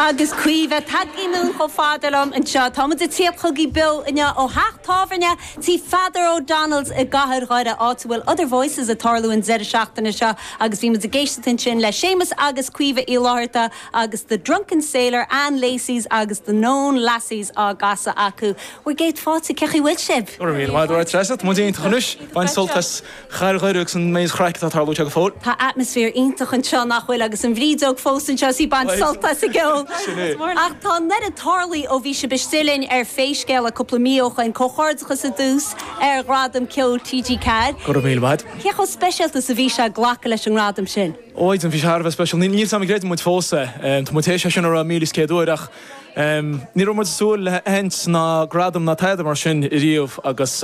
Agus Caoimhe, tagann siad chomh fada liom anseo. Táimid ag tíocht chugaibh beo inniu ó theach tábhairne tí Pheadar O'Donnells i gcathair Dhoire, áit a bhfuil Other Voices ag tarlú an deireadh seachtaine seo agus bhí muid ag éisteacht ansin le Séamus agus Caoimhe Uí Fhlátharta agus The Drunken Sailor, Ann Lacey's agus The Noon Lasses á gcasadh acu. Bhur gcéad fáilte, cén chaoi a bhfuil sibh? Go raibh míle maith agat, Treasa. Tá muid iontach anois, ag baint sult as! Cathair Dhoire agus an méid craic atá ag tarlú anseo go fóill. Tá atmaisféar iontach anseo, nach bhfuil? Agus an bhrídeog fós anseo is í ag baint sult as an gceol. Ach tá an oiread tarlaithe ó bhí sibh istigh linn ar Pé Scéal É cúpla mí ó shoin, comhghairdeachas ar dtús ar Ghradam Ceoil TG4. Go raibh míle maith agat. Cé chomh speisialta is a bhí sé glacadh leis an ngradam sin? Ó a Mhaighdean, bhí sé thar a bheith speisialta. Nílim ag creidiúint fós é. Tá muid tar éis é sin a rá míle is céad uair ach. Ní raibh muid ag súil le haitheantas ná gradam ná tada mar sin riamh agus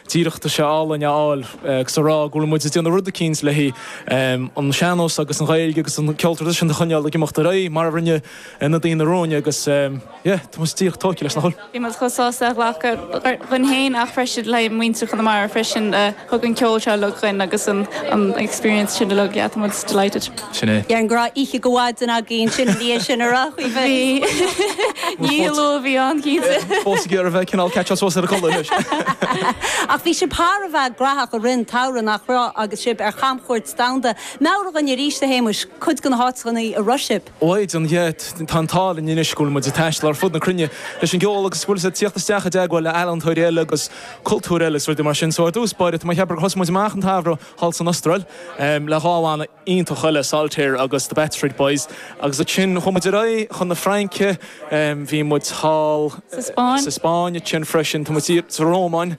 díreach tá sé álainn a fháil agus a rá go bhfuil muid ag déanamh rud eicínt leis an sean-nós agus an Ghaeilge agus an ceol traidisiúnta a choinneáil ag imeacht ar aghaidh mar a rinne na daoine romhainn agus yeah, tá muid díreach tógtha leis. Bhí muid chomh sásta é a ghlacadh ar ár son féin ach freisin le muintir Chonamara freisin. Thug an ceol seo uilig dhúinn agus an experience sin uilig, yeah. Tá muid delighted. Sin é. Bhí ragairne oíche go mhaidin againn, is féidir linn sin a rá faoi. Bhí ceiliúradh ann cinnte. Fós ag iarraidh a bheith cineál catch-up suas ar an gcodladh anois. Ach bhí sibh thar a bheith graitheach i rith an tsamhraidh nach raibh agus sibh ar chamchuairt domhanda. Meabhraigh dhúinn arís a Shéamuis cuid de na háiteanna a raibh sibh. Ó a Mhaighdean yeah, tá an t-ádh linn anois go bhfuil muid ag taisteal ar fud na cruinne leis an gceol agus go bhfuil muid ag tíocht isteach i dteagmháil le ealaíontóirí eile agus cultúir eile is rudaí mar sin. So ar dtús báire, tá mé ag ceapadh gur thosaigh muid amach an samhradh thall san Astráil le dhá bhanna iontach eile, Saltaire agus The Bath Street Boys, agus ansin chuaigh muid ar aghaidh chun na Fraince, bhí muid thall sa Spáinn, ansin freisin thall sa Rómáin,